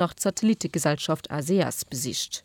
nach d'Satellittegesellschaft ACS besicht.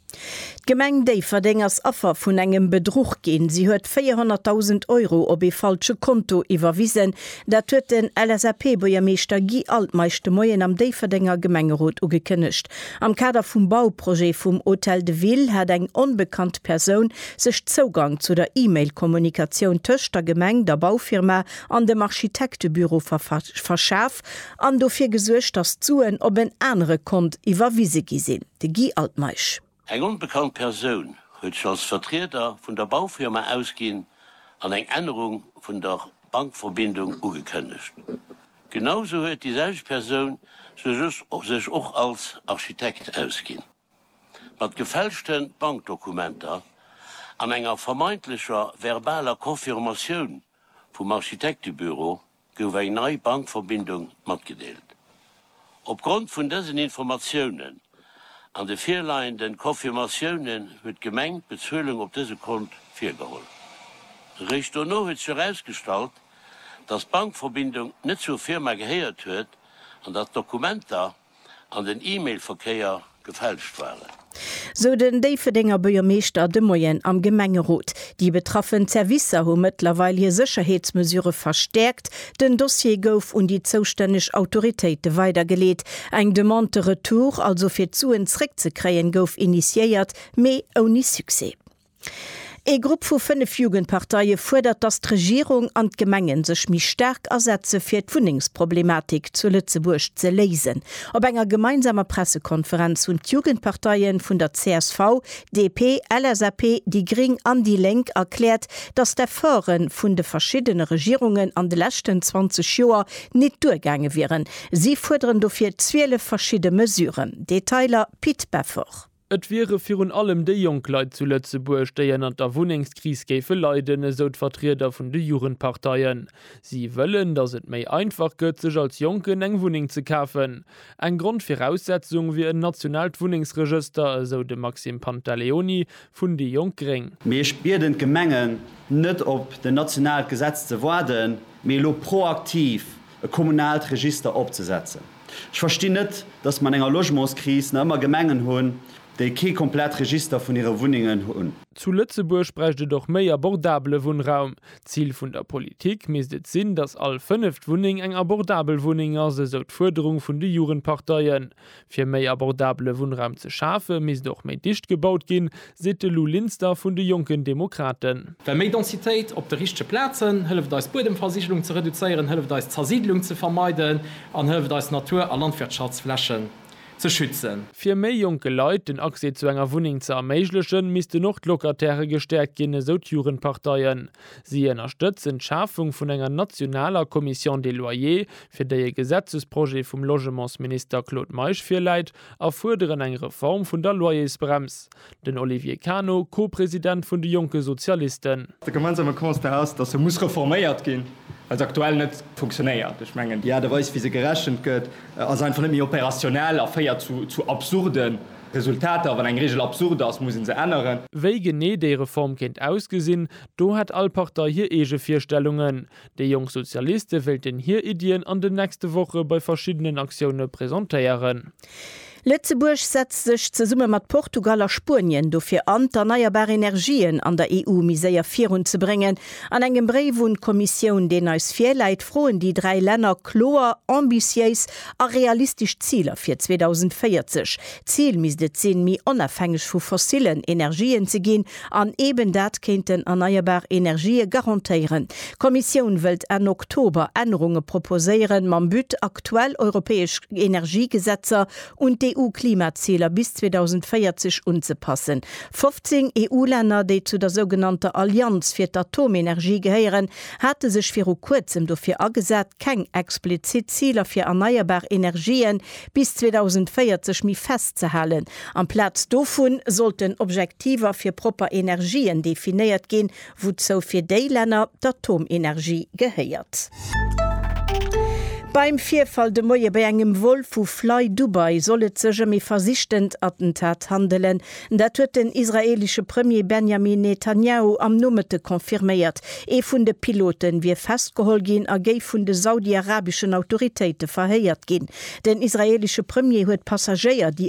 D'Gemeng Déifferdeng ass Affer vun engem Bedruch ginn. Si huet 400.000 Euro op ee falsche Konto iwwerwisen. Dat huet den LSAP-Buergermeeschter Guy Altmeisch de Moien am Déifferdenger Gemengerot ugekënnegt. Am Kader vum Bauprojet vum Hôtel de Ville hat eng onbekannt Persoun sech Zougang zu der E-Mail-Kommunikatioun tëscht der Gemeng, der Baufirma an dem Architektebüro verschaf. Kap an dofir gesuergt, datt d'Suen op en anere Kont iwwerwise gi sinn. De Guy Altmeisch. Eng onbekannt Persoun huet sech als Vertrieder vun der Baufirma ausginn an eng Ännerung vun der Bankverbindung ugekënnegt. Genau esou huet déi selwecht Persoun sech och als Architekt ausginn. Mat gefälschte Bankdokumenter an enger vermeintlecher verbaler Confirmatioun vum Architektebüro gouf eng nei Bankverbindung matgedeelt. Opgrond vun dësen Informatiounen an de virleiende Confirmatiounen huet d'Gemeng d'Bezuelung op dëse Kont virgeholl. Eréischt dono huet sech erausgestallt, datt d'Bankverbindung net zur Firma gehéiert huet an datt d'Dokumenter, an den E-Mail-Verkéier gefälscht waren. Sou den Déifferdenger Buergermeeschter de Moien am Gemengerot. Déi betraffen Zerwisser hu mëttlerweil hir Sécherheetsmesure verstäerkt. Den Dossier gouf un déi zoustänneg Autoritéite weidergeleet. Eng Demande de retour, also fir d'Suen zréckzekréien, gouf initiéiert, mee ouni Succès. Ee Grupp vu fënnef Jugendparteie fuerdert, datt d'Regierung an d'Gemenge sech méi staark asetze fir d'Wunnengsproblematik zu Lëtzebuerg ze léisen. Op enger gemeinsamer Pressekonferenz hunn d'Jugendparteie vun der csv, DP, LSAP, déi gréng an déi lénk erkläert, datt d'Efforte vun de verschiddene Regierungen an de leschten 20 Joer nit duergaange wieren. Si fuerderen dofir 12 verschidde Mesuren. Detailer Pit Beffort. Et wiere virun allem déi jonk Leit zu Lëtzebuerg, déi ënnert der Wunnengskris géife leiden, esou d'Vertrieder vun de Jugendparteien. Si wëllen, datt et méi einfach gëtt, sech als Jonken eng Wunneng ze kafen. Eng Grondviraussetzung wier en nationaalt Wunnengsregëster, esou de Maxime Pantaleoni vun déi jonk gréng. Mee ech bieden d'Gemengen, net op den nationaalt Gesetz ze waarden, mee elo proaktiv e kommunaalt Register opzesetzen. Ech verstinn net, dass mer an enger Logementskris nach ëmmer Gemengen hunn, déi kee komplett Register vun hire Wunnengen hunn. Zu Lëtzebuerg bräicht et och méi abordabele Wunnraum. D'Zil vun der Politik misst et sinn, dass all fënneft Wunneng eng abordabel Wunneng ass, esou d'Fuerderung vun de Jugendparteien. Fir méi abordabele Wunnraum ze schafe misst och méi dicht gebaut ginn, seet de Lou Linster vun de Jonken Demokraten. Well méi Densitéit op de richtege Plazen hëlleft eis d'Buedemversigelung ze reduzéieren, hëlleft eis d'Zersiidlung ze vermeiden an hëlleft eis Natur a Landwirtschaftsflächen ze schützen. Fir méi jonke Leit den Accès zu enger Wunneng ze erméiglechen, missten och d'Locatairë gestäerkt ginn, esou d'Jugendparteien. Si ënnerstëtzen d'Schafung vun enger nationaler Commission des loyers, fir déi e Gesetzesprojet vum Logementsminister Claude Meisch virläit, a fuerderen eng Reform vun der Loyersbrems, den Olivier Cano, Co-President vun de jonke Sozialisten. De gemeinsame Constat ass, datt se muss reforméiert ginn, well se aktuell net funktionéiert. Ech mengen, déi Aart a Weis, wéi se gerechent gëtt, ass einfach net méi opérationnel a féiert zu absurde Resultater. Wann eng Reegel absurd ass, muss ee se änneren. Wéi genee déi Reform kéint ausgesinn, do hätt all Partei hir eege Virstellungen. Déi jonk Sozialiste wéilten hir Iddien an den nächste Woche bei verschiddenen Aktioune presentéieren. Lëtzebuerg setzt sech zesumme mat Portugal a Spuenien dofir an, d'erneierbar Energien an der EU méi séier virun ze bréngen. An engem Bréif un d'Kommissioun, deen eis virläit, froen déi dräi Länner kloer, ambitiéis a realistesch Ziler fir 2040. D'Zil misst et sinn, méi onafhängeg vu fossilen Energien ze ginn An eben dat kéinten erneierbar Energië garantéieren. D'Kommissioun wëllt Enn Oktober Ännerunge proposéieren, mam But, aktuell europäesch Energiegesetzer un d'EU-Klimaziler bis 2040 unzepassen. 15 EU-Länner, déi zu der sougenannter Allianz fir d'Atomenergie gehéieren, hate sech viru kuerzem dofir agesat, keng explizitt Ziler fir erneierbar Energië bis 2040 méi fest ze halen. Amplaz dovun sollten Objektiver fir propper Energien definéiert ginn, wouzou fir déi Länner d'Atomenergie gehéiert. Beim Virfall de Moie bei engem Vol vu Flydubai soll et sech ëm ee versichtent Attentat handelen, Dat huet den israeelesche Premier Benjamin Netanjahu am Nomëtte confirméiert. Ee vun de Pilote wier festgeholl ginn a géif vun de saudi-arabeschen Autoritéite verhéiert ginn. Den israeelesche Premier huet d'Passagéier, déi